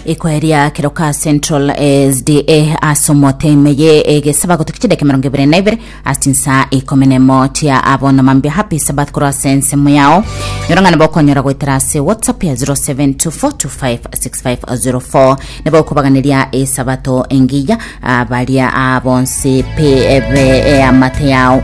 Ikoeria Keroka Central SDA ase omote ime ye egesaba gotoki chideke mirongo ibere na ibere ase chinsa ikomi na emo chia abono mambia happy sabath korwa ase ensemo yao nyorong'ane bokonyora goetera ase whatsapp ya 0724256504 nabo okobaganeria esabato engiya ah, baria ah, bonsi pe ebe eh, amate yao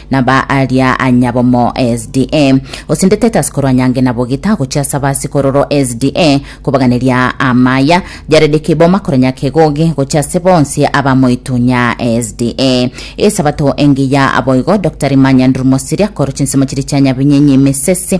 na ba aria anyabomo SDA. Osindete Titus korwa Nyange na Bogita gochia ase abasikororo SDA kobaganeria amaya. Jared Kiboma korwa Nyakegogi gochia ase bonsi aba Moitunya SDA. Esabato engiya boigo Dr. Emma Nyanduri Mosiria korwa chinsemo chiria chia Nyabinyenyi Misisi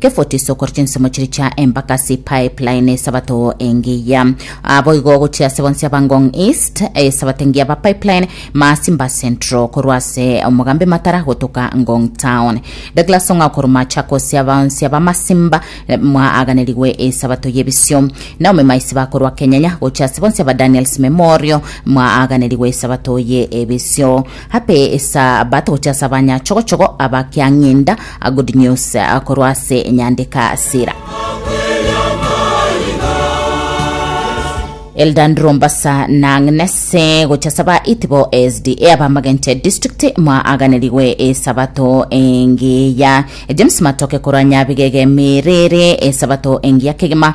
Kefutiso korwa chinsemo chiria chia empaka ase epipeline esabato engiya. Boigo gochia ase bonsi aba Ngong East, esabato engiya aba pipeline Masimba Central korwa ase omogambi Matara gotoka Ngong Town. Douglas Ong'ao korwa Machakos aba onsi aba Masimba mwaaganirigwe esabato y'ebisio. Naomi Maisiba korwa Kenyanya gochia ase bonsi aba Daniels Memorial mwaaganirigwe esabato ye ebisio. Abe Esabato gochia ase abanyachogochogo abakiang'inda, a Good News, a korwa ase enyandeka Sira. Elder Ndrombasa na Agnes eh, gochia ase aba Itibo SDA abamagenche district mwaaganirigwe Esabato engiya. James Matoke korwa Nyabigege Miriri Esabato engiya kegima